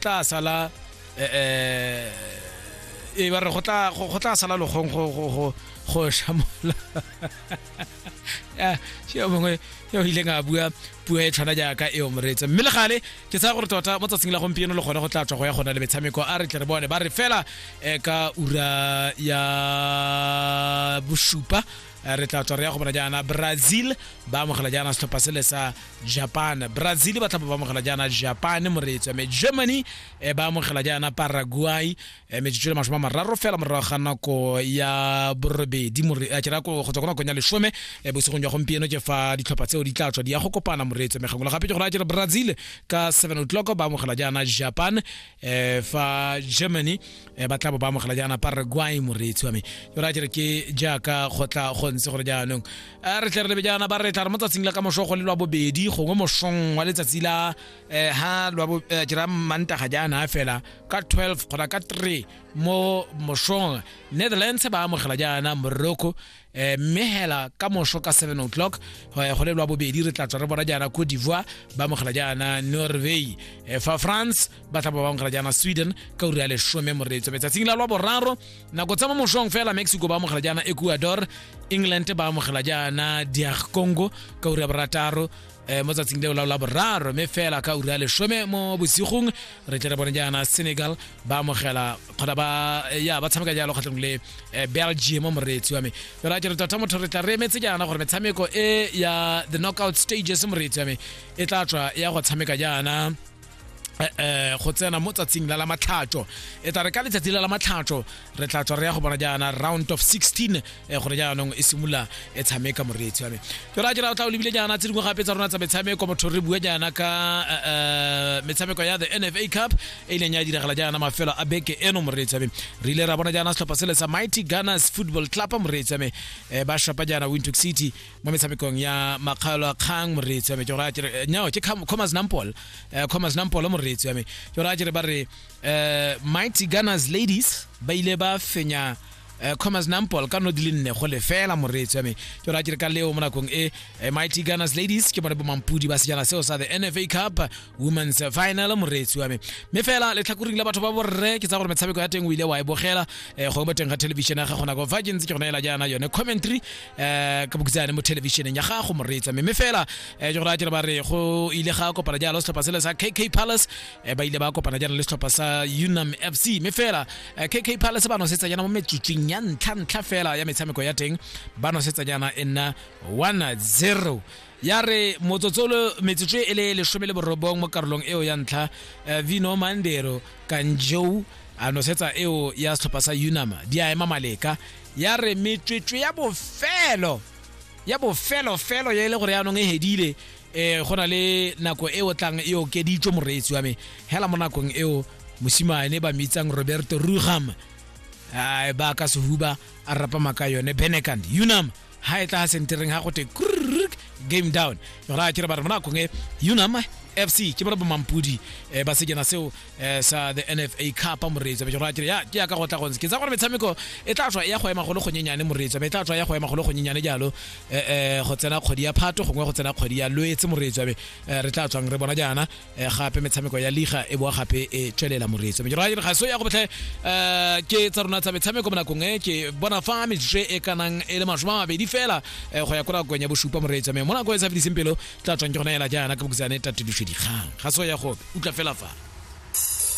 tla sala eh, eh, e ba re go tla go tla sala logong go go go go shamola ya yo mongwe yo ile nga bua puo e tshwana jaaka e omretse mme le gale ke tsaya gore tota mo tsatsing la gompieno le gone go tla tswa go ya gona le metshameko a re tle re bone ba re fela eh, ka ura ya bosupa Eh, re tla tswa re ya go bona jaana brazil ba amogela jaana setlhopha sele sa japan brazil ba tlhapa ba amogela jaana japan moreetso mme germany eh, ba amogela jaana paraguay eh, metsotso le masome a mararo fela morago ga nako ya borobedi ke ra go tswa ko nakong ya lesome bosigong jwa gompieno ke fa ditlhopha tseo di tla tswa di ya go kopana moreetso mme gangwe le gape ke go raya jalo brazil ka seven o'clock ba amogela jaana japan eh fa germany eh ba tla bo ba amogela jaana pa re gwai moreetsi wa me ke ra jere ke jaaka go tla go ntse gore jaanong a re tle re lebe jaana ba re tla re mo tsatsing la ka mosho go le lwa bobedi gongwe mosong wa letsatsi la eh ha lwa bo jera manta ga jaana fela ka 12 gona ka 3 mo mosong netherlands ba amogela jaana morocco eh, mme hela ka moso ka 7 o'clock eh, go le lwa bobedi re tla tswa re bona jaana ko divoa ba amogela jaana norway eh, fa france ba tla ba ba amogela jaana sweden ka uri ya lesome moreetso metsatsing la lwa boraro nako tsa mo mosong fela mexico ba amogela jaana ecuador england ba amogela jaana diag congo ka uri ya borataro um mo tsatsing leo la boraro mme fela ka ura lesome mo bosigong re tle re bone jaana senegal ba amogela kgona ba eh, ya ba tshameka jalo kgatlhong le eh, belgium mo moreetsi wa me fela a ke re tota motho re tla re emetse jaana gore metshameko e ya the knockout stages moreetsi wa me e tla tswa ya go tshameka jaana eh, eh, go tsena mo tsatsing la la matlhatso e tla re ka letsatsi la la matlhatso re tla tswa re ya go bona jaana round of 16 eh, gore jaanong e simolola e tshameka moreetsi wa me ke ra jera o tla o lebile jaana tse dingwe gape tsa rona tsa metshameko motho re bua jaana ka eh, eh, metshameko ya the nfa cup e ileng ya diragala jaana mafelo a beke eno moreetsi wa me re ile ra bona jaana setlhopha sele sa mighty gunners football club moreetsi wa me eh, ba shapa jaana windhoek city mo metshamekong ya makgalo a kgang moreetsi wa me ke gore a kere eh, nyao ke Kham- commas nampol eh, commas nampol moreetsi wa me ke gore a kere ba re eh, mighty gunners ladies ba ile ba fenya eh, commas nampol ka no di le nne go lefela moreetsi wa me ke gore a kere ka leo mo nakong e eh, mighty gunners ladies ke bone bomampudi ba sejana seo sa the nfa cup women's final moreetsi wa me mme fela letlhakoring la batho ba borre ke tsa gore metshameko ya teng o ile wa e bogela eh, gongwe mo teng ga television ya gago nako fa ke ntse ke gona ela jaana yone commentary eh, ka bokitsa yane mo televisioneng ya gago moreetsi wa me mme fela eh, ke gore a kere ba re go ile ga kopana jalo setlhopha sele sa kk palace eh, ba ile ba kopana jalo le setlhopha sa unam fc mme fela eh, kk palace ba nosetsa jana mo metsotsing ya ntlha ntlha fela ya metshameko ya teng ba nosetsa jana e nna 1-0 ya re motsotsolo metsotso e le lesome le borobong mo karolong eo ya ntlha eh, vino mandero kanjou a nosetsa eo ya setlhopha sa unama di a ema maleka ya re metswetswe ya bofelo ya bofelofelo ya e le gore yaanong e hedile um go na le nako e o tlang e okeditswe moreetsi wa me hela mo nakong eo mosimane ba mitsang roberto ruham a ba ka sehuba a rapama ka yone benekand unam ha e tla sentereng ha go te game down ra ke re ba re mona kongwe unama fc ke bona bomampudi um ba sejana seo um sa the nfa cup moreetsa be ra ke ya ke ya ka go tla gontse ke tsa gore metshameko e tla tswa e ya go ema golo gonyenyane moreetsa be e tla tswa ya go ema golo gonyenyane jalo um go tsena kgwedi ya phato gongwe go tsena kgwedi ya loetse moreetsa be re tla tswang re bona jaana eh, gape metshameko ya liga e boa gape e tswelela moreetso mejoro ya diraga so ya go botlhe um ke tsa rona tsa metshameko mo nakong e ke bona fa metsotso e kanang e le masome a mabedi fela eh, go ya ko nakong ya bosupa moreetso mme mo nako e sa fediseng pelo tla tswang ke gona ela jaana ka bokutsane tatediso dikgang ga so ya go utlwa fela fa